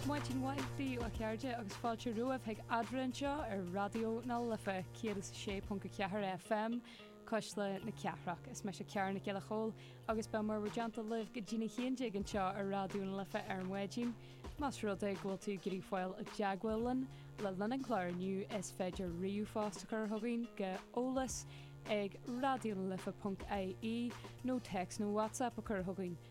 Maidin mhaith daoibh a chairde agus fáilte romhaibh chuig Adhmhaidin anseo ar Raidió na Life 106.4 FM, Cuisle na Cathrach. Is mise Ciara Nic Giolla Chomhaill agus beidh mé bhur dteannta libh go dtí a haon déag anseo ar Raidió na Life ar maidin. Más rud é go bhfuil tú ag iarraidh fáil i dteagmháil linn le linn an clár inniu is féidir ríomhphost a chur chugainn go eolas ag raidionalife.ie nó text nó whatsapp a chur chugainn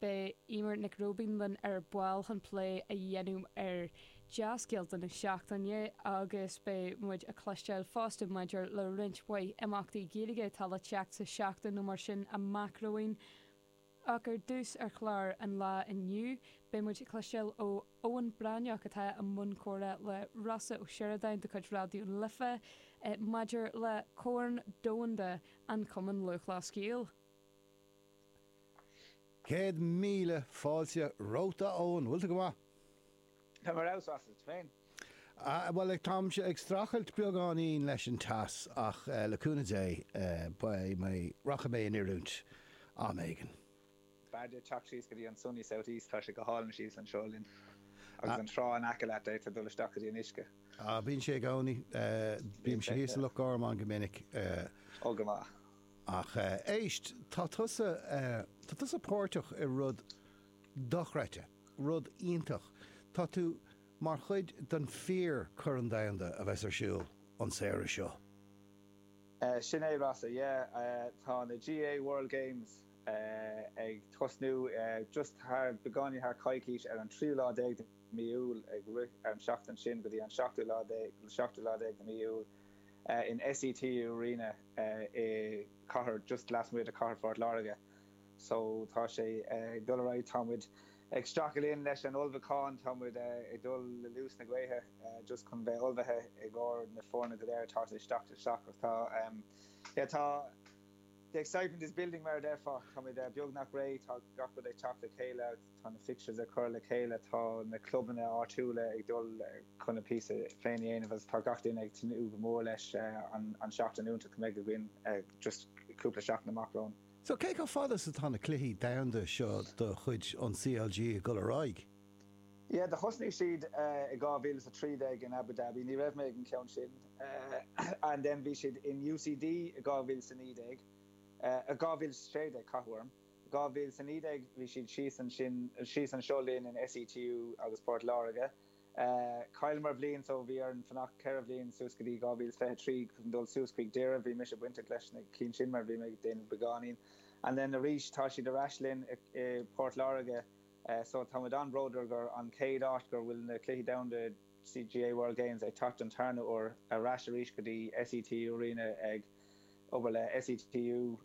Beidh Eimear Nic Róibín linn ar ball chun plé a dhéanamh ar dea-scéalta na seachtaine agus beidh muid ag cloisteáil fosta maidir le roinnt mhaith imeachtaí Gaeilge atá le teacht sa tseachtain nó mar sin amach romhainn. Ach ar dtús ar chlár an lá inniu, beidh muid ag cloisteáil ó Eoin Breathnach atá i mbun comhrá le Rossa Ó Sioradáin de chuid Raidió na Life maidir le Corn Domhanda an Chumann Lúthchleas Gael. Céad míle fáilte romhat a Eoin, bhfuil tú go maith? Tá mé an-sásta, is tú féin? Bhuel táimse ag streachailt beagáinín leis an teas ach le cúnamh Dé beidh mé, rachaidh mé in oiriúint am éigin. B'fhearr duit teacht síos go dtí an sunny south east, tá sé go hálainn thíos anseo linn agus an trá in aice leat, d'fhéadfá dul isteach go dtí an uisce. Bíonn sé i gcónaí, bímse thíos i Loch Garman go minic. Ó go maith. Ach éist, tá tusa, tá tusa páirteach i rud dochreidte, rud iontach. Tá tú mar chuid den fíor Corn Domhanda a bheas ar siúl an samhradh seo. Sin é, Rossa, yeah. Tá na GAA World Games ag tosnú just thar, beagáinín thar coicís, ar an tríú lá déag de mí Iúil, ag rith ar an seachtain sin go dtí an seachtú lá déag, seachtú lá déag de mí Iúil. in SETU Arena i cathair just lasmuigh de chathair Phort Láirge. So tá sé ag dul ar aghaidh. Tá muid ag streachailt linn leis an ullmhúchán. Tá muid ag dul le luas na gaoithe just chun bheith ullmhaithe i gcomhair na foirne go léir atá ag teacht isteach. Ach tá yeah tá the excitement is building mar a déarfá. Tá muid beagnach réidh. Tá gach rud ag teacht le chéile. Tá na fixtures á gcur le chéile, tá na clubanna áitiúla ag dul chun a píosa féin a dhéanamh agus tá gach duine ag tnúth go mór leis an tseachtain iontach a bheidh againn just cúpla seachtain amach romhainn. So, cé chomh fada is atá na cluichí domhanda seo de chuid an CLG ag dul ar aghaidh? Yeah, do thosnaigh siad i 2013 in Abu Dhabi, ní raibh mé ag an gceann sin, and then bhí siad in UCD i 2019, eh 2016 ceapaim. 2019 bhí siad síos ansin, síos anseo linn in SETU agus Port Láirge. Chailleamar bliain so bhí orainn fanacht ceithre bhliain suas go dtí 2023 chun dul suas chuig Doire. Bhí mise bainteach leis na cinn sin mar bhí mé ag déanamh beagáinín. And then arís tá siad ar ais linn i bPort Láirge so táimid an-bhródúil gur an chéad áit gur bhfuil na Cluichí Domhanda GAA World Games ag teacht don tarna uair ar ais arís go dtí SETU Arena ag obair le SETU,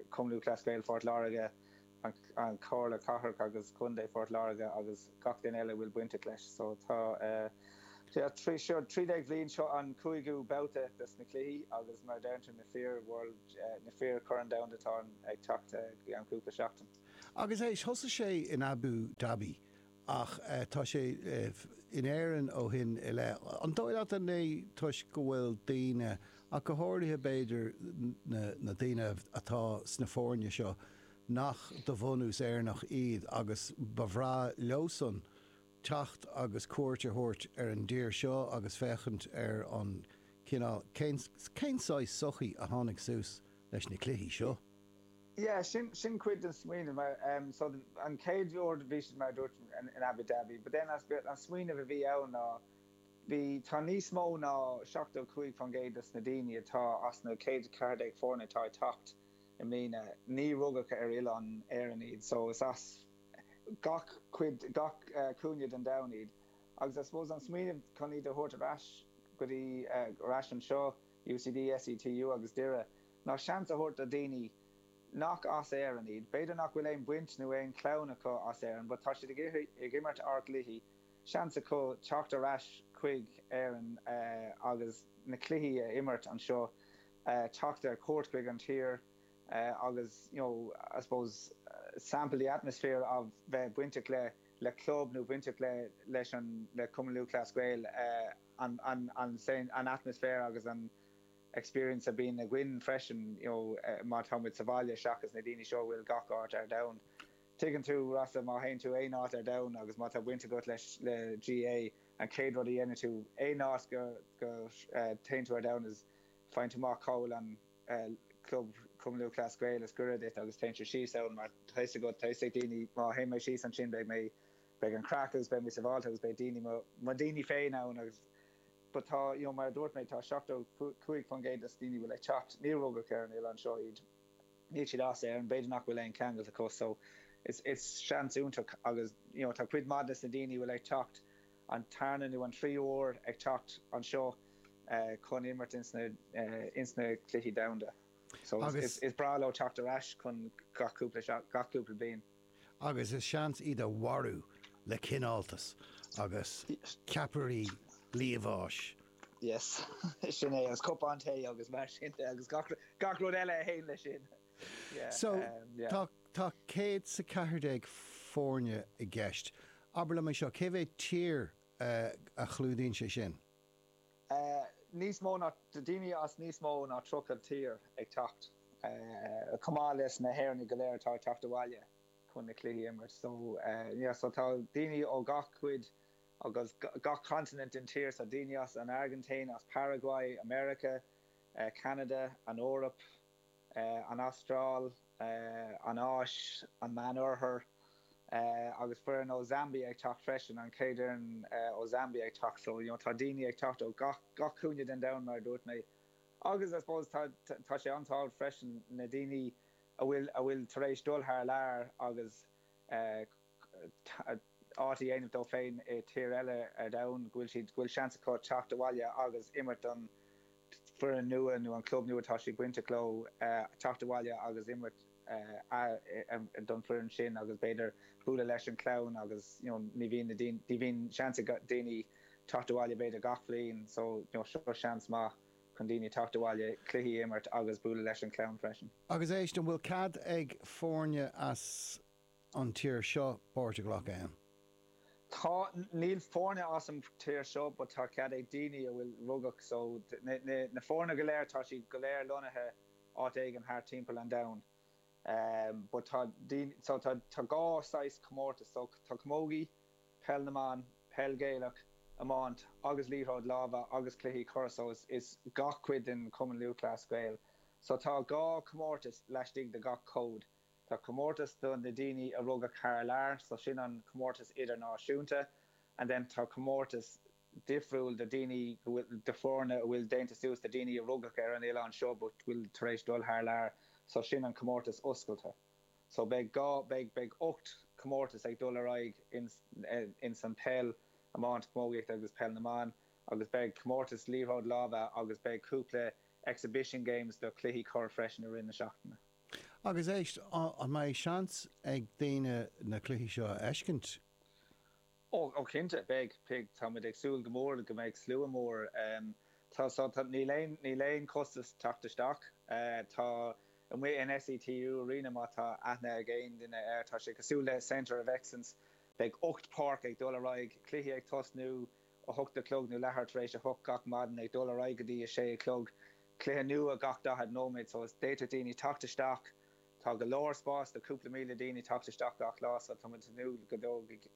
Cumann Lúthchleas Gael Phort Láirge, an Chomhairle Cathrach agus Contae Phort Láirge agus gach duine eile a bhfuil bainteach leis. So tá eh, seo trí déag bhliain, seo an cúigiú babhta dos na cluichí agus mar a deir tú na fir Chorn an Domhain atá ag teacht eh, gceann cúpla seachtain. Agus éist, thosaigh sé in Abú Daibí ach tá sé in Éirinn ó shin i leith. An dóigh leat an é toisc go bhfuil daoine, ach go háirithe b'fhéidir na daoine atá sna foirne seo nach de bhunús Éireannach iad agus ba bhreá leosan teacht agus cuairt a thabhairt ar an dtír seo agus féachaint ar an cineál, cén saghas sochaí a tháinig suas leis na cluichí seo? Yeah, sin, sin cuid den smaoineamh. So an chéad uair bhí siad mar a dúirt in Abu Dhabi, but then an smaoineamh a bhí ann ná bhí, tá níos mó ná 75% dos na daoine atá as na 114 foirne atá ag teacht i mbliana, ní rugadh ar oileán na hÉireann iad, so is as gach cuid, gach cúinne den domhan iad agus I suppose an smaoineamh chun iad a thabhairt ar ais go dtí, ar ais anseo, UCD, SETU agus Doire. Ná seans a thabhairt do dhaoine nach as Éirinn iad. B'fhéidir nach bhfuil aon bhaint nó aon chlann acu as Éirinn, but tá siad ag imirt ár gcluichí, seans acu teacht ar ais chuig Éirinn agus na cluichí a imirt anseo, teacht ar chuairt chuig an tír agus you know I suppose sample the atmosphere a bheith bainteach le le club nó bainteach le leis an le Cumann Lúthchleas Gael, an an an an atmaisféar agus an. experience a bhíonn againn freisin you know má tá muid sa bhaile seachas na daoine seo a bhfuil gach áit ar domhan. Tuigeann tú, Rossa, má théann tú aon áit ar domhan agus má tá baint agat leis le GAA, an chéad rud a dhéanann tú aon áit go go théann tú ar domhan is faigheann tú amach cá bhfuil an club Cumann Lúthchleas Gael is gaire duit agus téann tú síos ann mar tá fhios agat, tá fhios ag daoine má théann mé síos ansin beidh mé beidh an craic agus beidh mé sabháilte agus beidh daoine mo mo daoine féin ann agus. but tá, you know, mar a dúirt mé, tá 75% des na daoine a bhfuil ag teacht, níor rugadh ar an oileán seo iad, níl siad as Éirinn, b'fhéidir nach bhfuil aon cheangailt acu, so it's, it's seans iontach agus, you know, tá cuid maith des na daoine a bhfuil ag teacht an tarna nó an tríú huair ag teacht anseo chun imirt ins na, ins na Cluichí Domhanda, so is, is, is breá leo teacht ar ais chun, cúpla, gach cúpla bliain. agus is seans iad a mharú le cineáltas agus ceapairí liamháis. Yes. Sin é, agus cupán tae agus mar sin de agus gach rud eile a théann leis sin. So, tá céad is a ceathair déag foirne i gceist. Abair liom é seo, cé mhéad tír a chlúdaíonn sé sin? níos mó ná, daoine as níos mó ná 30 tír ag teacht, chomh maith leis na hÉireannaigh go léir atá ag teacht abhaile chun na cluichí a imirt. So, yeah, so tá daoine ó gach cuid agus gach continent den tír, so daoine as an Airgintín, as Paraguay, America, Canada, an Eoraip, an Astráil, an Áis, an Meánoirthear, agus foireann ó Zambia ag teacht freisin, an chéad fhoireann ó Zambia ag teacht. So, you know, tá daoine ag teacht ó gach, gach cúinne den domhan, mar a dúirt mé. Agus, I suppose, tá, tá sé an-tábhachtach freisin, na daoine a bhfuil, a bhfuil tar éis dul thar lear agus eh. áit a dhéanamh dóibh féin i tír eile ar domhan, go bhfuil siad, go bhfuil seans acu teacht abhaile agus imirt don foireann nua nó an club nua atá siad bainteach leo, teacht abhaile agus imirt don foireann sin agus b'fhéidir bualadh leis an clann agus you know ní bhíonn na daoine, ní bhíonn seans ag daoine teacht abhaile b'fhéidir gach bhliain so you know seo seans maith chun daoine teacht abhaile, cluichí a imirt agus bualadh leis an clann freisin. Agus éist, an bhfuil cead ag foirne as. an tír seo páirt a ghlacadh ann. Tá, níl foirne as an tír seo but tá cead ag daoine a bhfuil rugadh so na foirne go léir tá siad go léir lonnaithe áit éigin thart timpeall an domhain but tá daoine so tá dhá saghas comórtas so tá camógaí, peil na mban, peil Ghaelach, iomáint agus liathróid láimhe agus cluichí corr so is is gach cuid den Chumann Lúthchleas Gael so tá dhá comórtas laistigh de gach cód. Tá comórtas do na daoine a rugadh thar lear, so sin an comórtas idirnáisiúnta, and then tá comórtas difriúil do daoine go bhfuil, do foirne a bhfuil déanta suas de daoine a rugadh ar an oileán seo but bhfuil tar éis dul thar lear, so sin an comórtas oscailte. So beidh dhá, beidh, beidh ocht comórtas ag dul ar aghaidh ins, ins an peil, iomáint, camógaíocht agus peil na mban agus beidh comórtas liathróid láimhe agus beidh cúpla exhibition games do chluichí corr freisin i rith na seachtaine. Agus éist, an mbeidh seans ag daoine na cluichí seo a fheiscint? Ó cinnte, beidh, beidh. Tá muid ag súil go mór go mbeidh slua mór. Tá, so, tá, níl aon, níl aon chostas teacht isteach. Tá, amuigh an SETU Arena, má tá aithne ag aon duine air, tá sé cosúil le Centre of Excellence, beidh ocht páirc ag dul ar aghaidh, cluichí ag tosnú, a hocht a chlog nó leathuair tar éis a hocht gach maidin, ag dul ar aghaidh go dtí a sé a chlog, cluiche nua gach daichead nóiméad, so is, d'fhéadfadh daoine teacht isteach, tá go leor spás do chúpla míle daoine teacht isteach gach lá, so tá muid ag tnúth go dtógfaidh,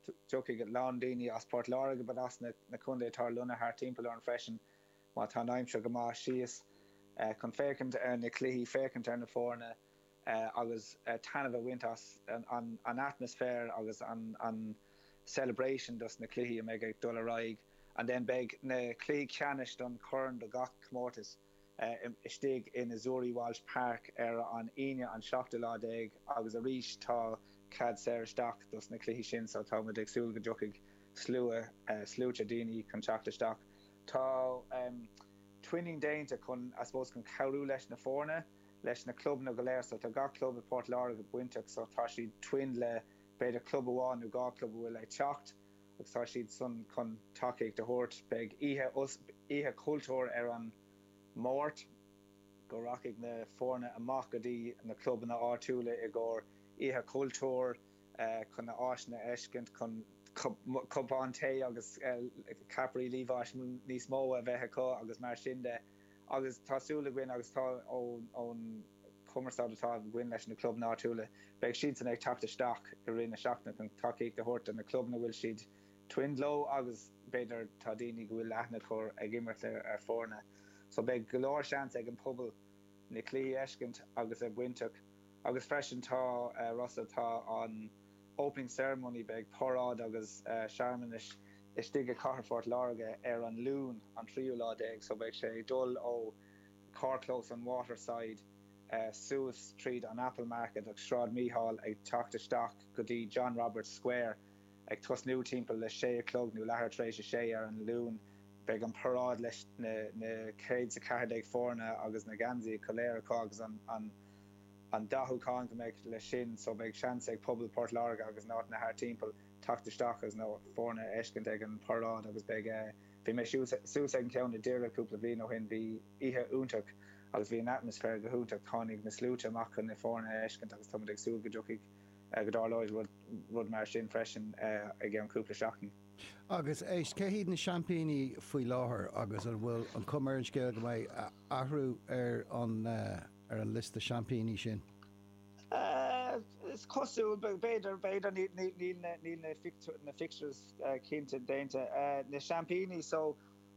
dtiocfaidh a lán daoine as Port Láirge but as na, na contaetha atá lonnaithe thart timpeall orainn freisin má tá an aimsir go maith síos chun féachaint ar na cluichí, féachaint ar na foirne. eh, agus eh, taitneamh a bhaint as an, an, an atmaisféar agus an, an celebration dos na cluichí a mbeidh ag dul ar aghaidh and then beidh na cluichí ceannais don chorn do gach comórtas eh, i, istigh i Azzurri Walsh Park ar an Aoine an seachtú lá déag agus arís tá cead saor isteach dos na cluichí sin so tá muid ag súil go dtiocfaidh slua eh, sluaite daoine chun teacht isteach. Tá em, twinning déanta chun, I suppose, chun cabhrú leis na foirne. leis na clubanna go léir so tá gach club i bPort Láirge bainteach so tá siad twinned le b'fhéidir club amháin nó dhá club a bhfuil ag teacht agus tá siadsan chun tacaíocht a thabhairt. Beidh oíche oíche chultúir ar an Máirt go rachaidh na foirne amach go dtí na clubanna áitiúla i gcomhair oíche chultúir chun na áiseanna a fheiscint chun cupán tae agus ceapairí liamháis níos mó a bheith acu agus mar sin de. Agus tá súil againn, agus tá ón chumarsáid atá againn leis na clubanna áitiúla, beidh siadsan ag teacht isteach i rith na seachtaine chun tacaíocht a thabhairt do na clubanna a bhfuil siad twinned leo agus b'fhéidir tá daoine go bhfuil aithne acu orthu ag imirt ar foirne. So beidh go leor seans ag an pobal na cluichí a fheiscint agus a bheith bainteach. Agus freisin tá Russell, tá an. Opening Ceremony Beidh paráid agus searmanais istigh i Cathair Phort Láirge ar an Luan an tríú lá déag so beidh sé ag dul ó Carrchlós an Waterside suas tríd an Apple Market agus Sráid Mhichíl ag teacht isteach go dtí John Roberts Square ag tosnú timpeall a sé a chlog nó leathuair tar éis a sé ar an Luan. Beidh an paráid leis na céad 's a ceathair déag foirne agus na geansaithe go léir acu agus an. an dathúchán go mbeidh leis sin so beidh seans ag pobal Port Láirge agus na háiteanna thart timpeall teacht isteach is na foirne a fheiscint ag an paráid agus beidh bhí mise thuas ag an ceann i nDoire cúpla bhliain ó shin b'oíche iontach agus bhí an atmaisféar go hiontach tháinig na sluaite amach chun na foirne a fheiscint agus tá muid ag súil go dtiocfaidh go dtarlóidh rud rud mar sin freisin i gceann cúpla seachtain. Agus éist, cé hiad na seaimpíní faoi láthair agus an bhfuil an chuma ar an scéal go mbeidh athrú ar an ar an liosta seaimpíní sin? Cosúil, b'fhéidir, b'fhéidir, níl na fixtures cinnte déanta, na seaimpíní so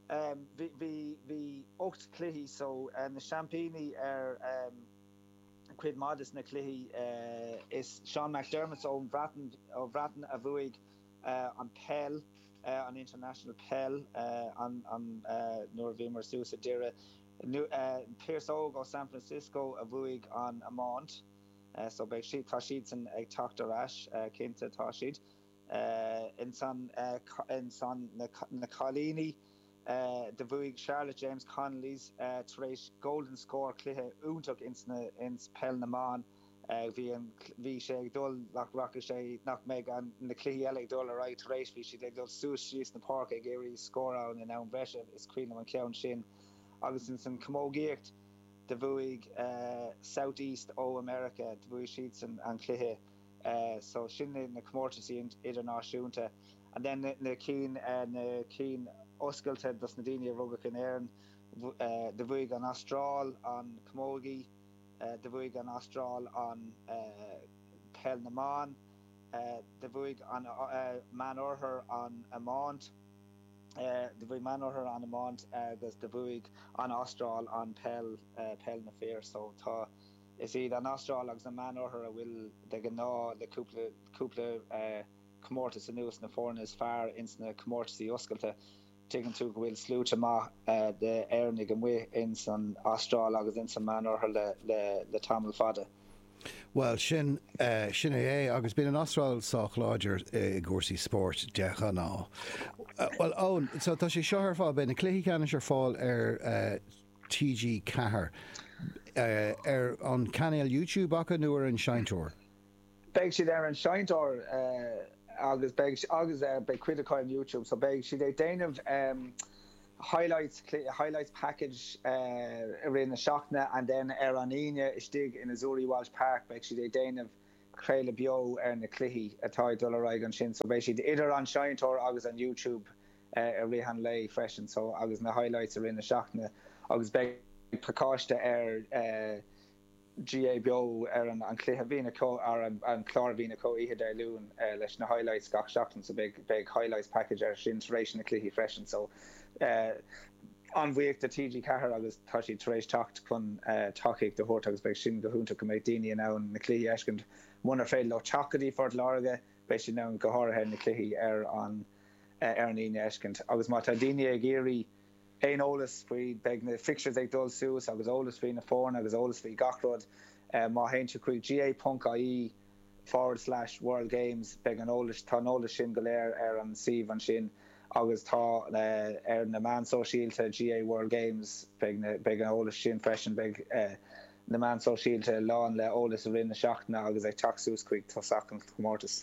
bhí bhí ocht cluichí so na seaimpíní ar cuid maith de na cluichí is Sean McDermott ón Bhreatain ó Bhreatain a bhuaigh an peil an international peil an an nuair a bhíomar suas i Derry Pearse Óg ó San Francisco a bhuaigh an iomáint so beidh siad, tá siadsan ag teacht ar ais, cinnte, tá siad. In san na cailíní do bhuaigh Charlotte James Connollys tar éis golden score cluiche iontach ins peil na mban. bhí an, bhí sé ag dul, nach rachaidh sé, nach mbeidh an, na cluichí eile ag dul ar aghaidh tar éis, bhí siad ag dul suas síos na páirce ag iarraidh scóráil in am breise, is cuimhin liom an ceann sin. Agus in san camógaíocht, do bhuaigh South East ó America, do bhuaigh siadsan an cluiche. So sin iad na comórtaisí idirnáisiúnta. And then na cinn, na cinn oscailte dos na daoine a rugadh in Éirinn, do bhuaigh an Astráil an camógaí. Do bhuaigh an Astráil an Peil na mBan. Do bhuaigh an Meánoirthear an iomáint. Do bhuaigh Meánoirthear an iomáint agus do bhuaigh an Astráil an peil, Peil na Fir. So tá, is iad an Astráil agus an Meánoirthear a bhfuil de ghnáth le cúpla, cúpla comórtas anuas na foirne is fearr ins na comórtaisí oscailte. Tuigeann tú go bhfuil slua maith d'Éireannaigh amuigh ins an Astráil agus ins an Meánoirthear le tamall fada. Bhuel, sin, sin é, sea, agus bíonn an Astráil sách láidir i gcúrsaí spóirt de ghnáth. Bhuel, Eoin, so tá sé seo ar fáil, beidh na cluichí ceannais ar fáil ar TG Ceathair, ar an chainéal YouTube acu nó ar an seinnteoir? beidh siad ar an seinnteoir agus beidh agus beidh cuid acu ar Youtube so beidh siad ag déanamh highlights highlights package i rith na seachtaine and then ar an Aoine istigh in Azzurri Walsh Park beidh siad ag déanamh craoladh beo ar na cluichí atá ag dul ar aghaidh ansin so beidh siad idir an seinnteoir agus an Youtube i rith an lae freisin so agus na highlights i rith na seachtaine agus beidh pacáiste ar GAA Beo ar an an chluiche a bhíonn acu ar an an chlár a bhíonn acu oíche Dé Luain leis na highlights gach seachtain so beidh beidh highlights package ar sin tar éis na cluichí freisin so an-bhuíoch de TG Ceathair agus tá siad tar éis teacht chun tacaíocht a thabhairt agus beidh sin go hiontach go mbeidh daoine in ann na cluichí a fheiscint munar féidir leo teacht go dtí Phort Láirge beidh siad in ann go háirithe na cluichí ar an ar an Aoine a fheiscint agus má tá daoine ag iarraidh aon eolas faoi, beidh na fixtures ag dul suas agus eolas faoi na foirne agus eolas faoi gach rud. Má théann sibh chuig ga.ie forward slash world games beidh an eolas, tá an eolas sin go léir ar an suíomh ansin agus tá ar na meán sóisialta GAA World Games beidh na, beidh an eolas sin freisin, beidh na meán sóisialta lán le eolas i rith na seachtaine agus ag teacht suas chuig tosach an chomórtas.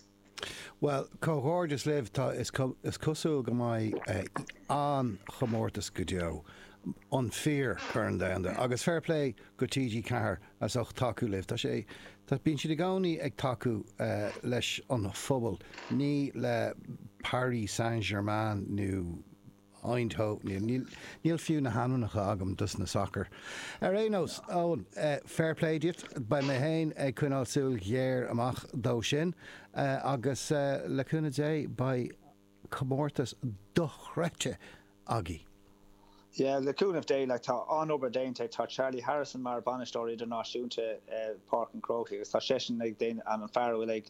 Bhuel, comhghairdeas libh, tá, is cosúil go mbeidh an-chomórtas go deo, an fíor Corn Domhanda, agus fair plé go TG Ceathair as ucht tacú libh, tá sé, bíonn siad i gcónaí ag tacú leis an phobal, ní le Paris Saint Germain nó. Eindhoven. Níl fiú na hainmneacha agam dos na sacair. Ar aon nós, Eoin, fair play dhuit, beidh mé féin ag coinneáil súil ghéar amach dó sin agus le cúnamh Dé beidh comórtas dochreidte againn! Yeah, le cúnamh Dé, like tá an-obair déanta ag tá Charlie Harrison mar Bhainisteoir Idirnáisiúnta Páirc an Chrócaigh agus tá seisean ag déanamh, an fear a bhfuil ag,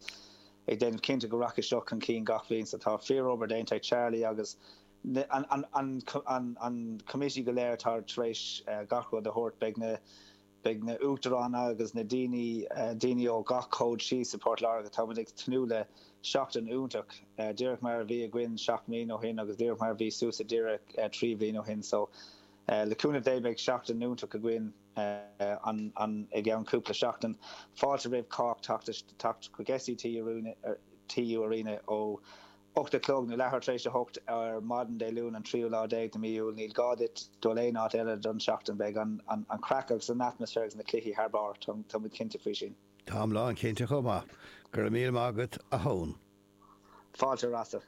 ag déanamh cinnte go rachaidh seo chun cinn gach bhliain is tá fíorobair déanta ag Charlie agus an committee go léir atá tar éis gach rud a thabhairt. Beidh na Beidh na Uachtaráin agus na daoine daoine ó gach cód síos i Port Láirge. Táimid ag tnúth le seachtain iontach, díreach mar a bhí againn seacht mbliana ó shin agus díreach mar a bhí suas i nDoire trí bhliain ó shin. So le cúnamh Dé beidh seachtain iontach againn. I gceann cúpla seachtain, fáilte roimh chách teacht chuig SETU Arena ó 8 a chlog nó leathuair tar éis a hocht ar maidin Dé Luain an tríú lá déag de mí Iúil. Níl gá duit dul aon áit eile don tseachtain. Beidh an chraic agus an atmaisféar agus na cluichí thar barr, tá muid cinnte faoi sin. Táim lán cinnte chomh maith. Go raibh míle maith agat a Eoin. Fáilte Rasa.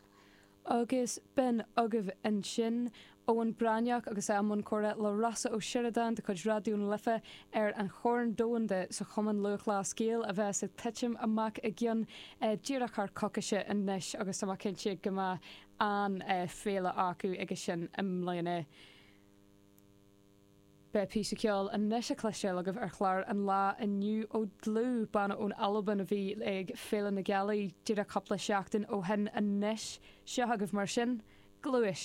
Agus b'in agaibh ansin Eoin Breathnach agus é i mbun comhrá le Rossa Ó Sioradáin de chuid Raidió na Life ar an Chorn Domhanda sa Chumann Lúthchleas Gael a bheas ag titim amach i gcionn díreach thar coicise anois agus tá mé cinnte go mbeidh an-fhéile acu aige sin i mbliana. Beidh píosa ceoil anois le cloisteáil agaibh ar chlár an lá inniu ó Dlúth, banna ón Albain a bhí ag Féile na Gealaí díreach cúpla seachtain ó shin anois. Seo agaibh mar sin, Gluais.